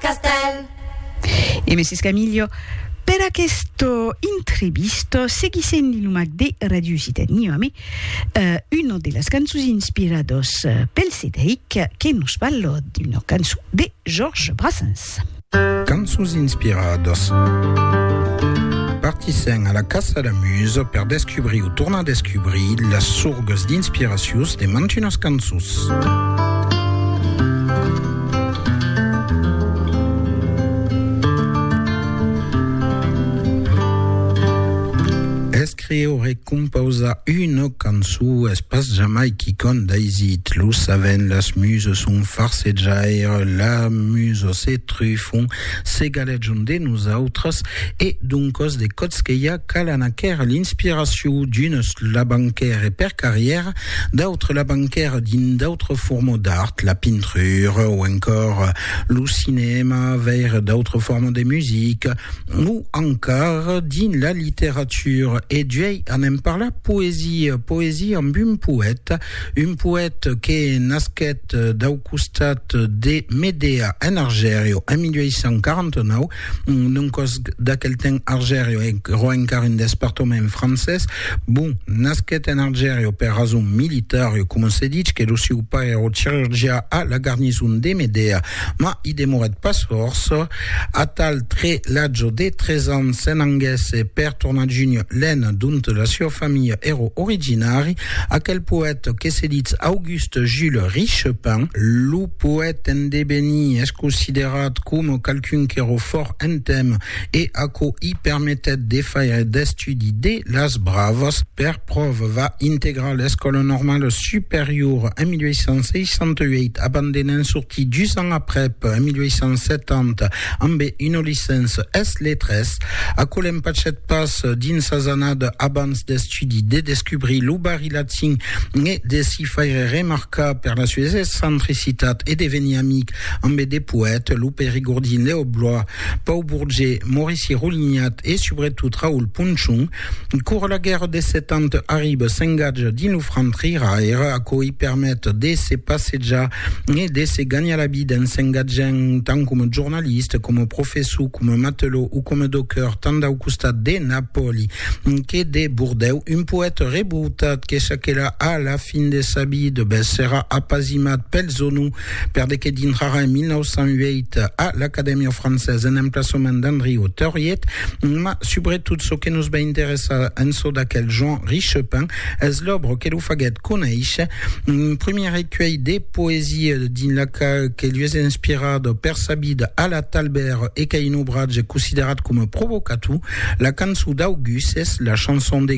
castèl. E Mès Escamillo, per aquesta intrevista seguissèm li nomat de Ràdio Occitània amé una de las cançons inspiradas pel Cedric que nos parla d'una cançon de Georges Brassens. Cançons inspiradas Partissèm a la caça la musa per descubrir o tornar descubrir las sorgas d'inspiracions de mantunas cançons. Escriure e composar una cançó es pas jamai quicòm d'aisit, lo saben, las musas son farsejaires, las musas se trufan, se galejan de nosautres e doncas de còtzquelha calan aquera l'inspiracion d'unes labancaires per carrièra, D'autres la banquèra dins d'autres formes d'art, la pintrura o encòr lo cinèma, veire d'autres formes de musica o encar dins la literatura. E juei anem parlar poesia, poesia amb un poèta, un poèta que nasquèt dau costat de Medea en Argèria en 1849, Non còs d'aquel temps Argerio e ro encara un despartament francés. Bon, nasquet en Argerio per rason militar, e coma se ditz que lo sieu pair ro chirurgià a la garnison de Medea, ma i demorèt pas fòrça, atal tre l'atge de tres ans se n'anguèsse per tornar junh l'Aisne dont la sieu familha ero originari. Aquel poète que se ditz Auguste. Auguste Jules Richepin, lo poète en devenir, es considerat coma qualqu'un qu'èra fòrt en temps e aquò i permetèt de faire d'estudi de las bravas. Per pròva, va integrar l'Escòla Normala Superiora en 1868, abandonant sortir dus ans aprèp, en 1870, ambe una licença es letras. Aquò l'empachèt pas dins sas annadas abans d'estudi. l'estudi de descubrir lo barri latin e de s'i faire remarcar per la sues excentricitat e de venir amic ambe de poètes, lo Périgordin Léo Blois, Pau Bourget, Maurici Roulignat e subretot Raoul Ponchon. Cor la guèrra de Set Ans arriba, s'engatja dins lo franc triraire, aquò i permet de se passejar e de se ganhar la vida en s'engatjant tant coma jornalista, coma professor, coma matelot o coma docker tant dau costat de Napòli que de Bordèu, un poète rebrotat que saquerà a la fin de sa vida, ben serà apasimat pel Zonou, per de que dintrarà en 1908 a l'Acadèmia Française en emplaçament d'Andriot Theuriet, ma subretot çò que nos va interessar en çò d'aquel Jean Richepin es l'òbra que lo faguèt conéisher Un premier recuelh de poesia dins la qual que lui es inspirat per sa vida a la Talbert e qu'a un obratge considerat coma provocator, la cançon d'August es la chanson de